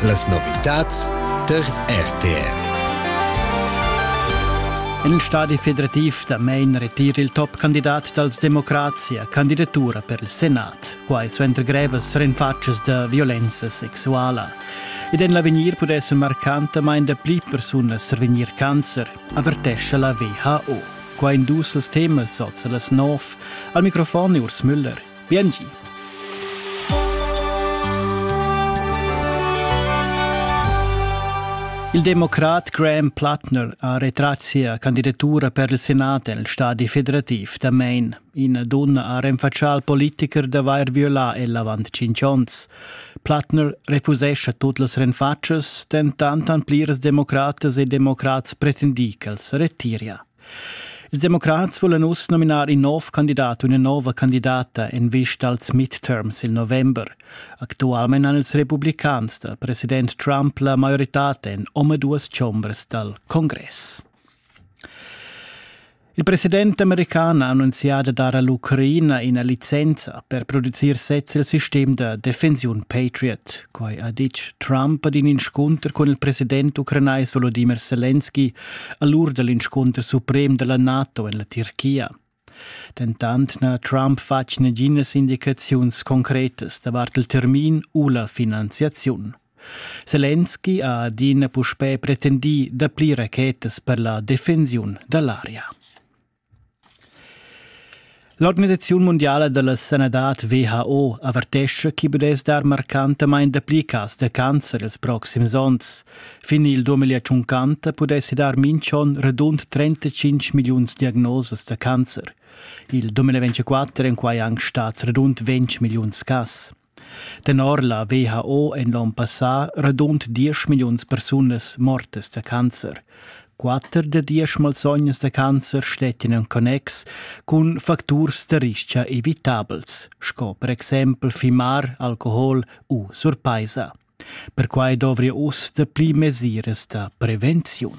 Las novitads der RTR. En stadi federativ da Main retir il topcandidat dals democrazia candidatura per il Senat, quai suenter grevas rinfatschas da violenza sexuala. Ed en l'avegnir pudesse marcantamain da pli persunas survegnir cancer, avertescha la WHO. Qua in dus als temas sozza las nov. Al microfon Urs Müller. Biengi. Il democrat Graham Plattner ha retrat sia candidatura per il Senat el stadi federativ da Maine. Ina dunna ha renfatschà al politicher d'avair violà el avant cinc onns. Plattner refusescha tut las renfatschas, dentant han pliras democratas e democrats pretendì ch'els retiria. Ils democrats vulan uss nominar in nov candidat u ina nova candidata en vista als midterms il november. Actualmein han ils republicans dal president Trump la maioritad en omaduas chombras dal congress. Il president american ha annunziato dar all'Ucraina una licenza per producir sez il sistem da defensiun Patriot. Quai ha ditg Trump ad in inscunter con il president ucrainais Volodymyr Zelensky a l'ur da l'inscunter suprem da la NATO en la Tirchia. Dentant n'ha Trump fatg naginas indicaziuns concretas davart il termin u la finanziaziun. Zelensky ha adina puspè pretendì dapli rachetas per la defensiun da l'aria. L'organisaziun mundiala da sanadad WHO avertescha ch'i pudess dar marcantamain dapli cas da cancer ils proxims onns. Fin il 2050 pudessi dar mintg'onn radund 35 milliuns diagnosas da cancer. Il 2024 èn quai anc stads radund 20 milliuns cas. Tenor la WHO èn l'onn passà radund diesch milliuns persunas mortas da cancer. Quatter da diesch malsognas da cancer stettin en connex cun facturs da rischia evitabels, sco per exempel fimar, alcohol u surpaisa. Perquai dovria uss dapli mesiras da prevenziun.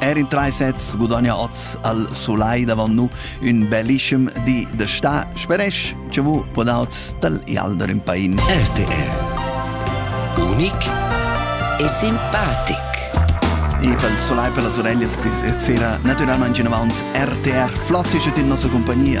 Er in tre sets gudogna oz al Sulai davant nu ün bellischem di da sta. Speresch che vu podaut tal Ialder in pain. RTR Unic e simpatic. E pel Solai per las oreglias sera naturalmente in avant RTR Flott ist in nostra compagnia.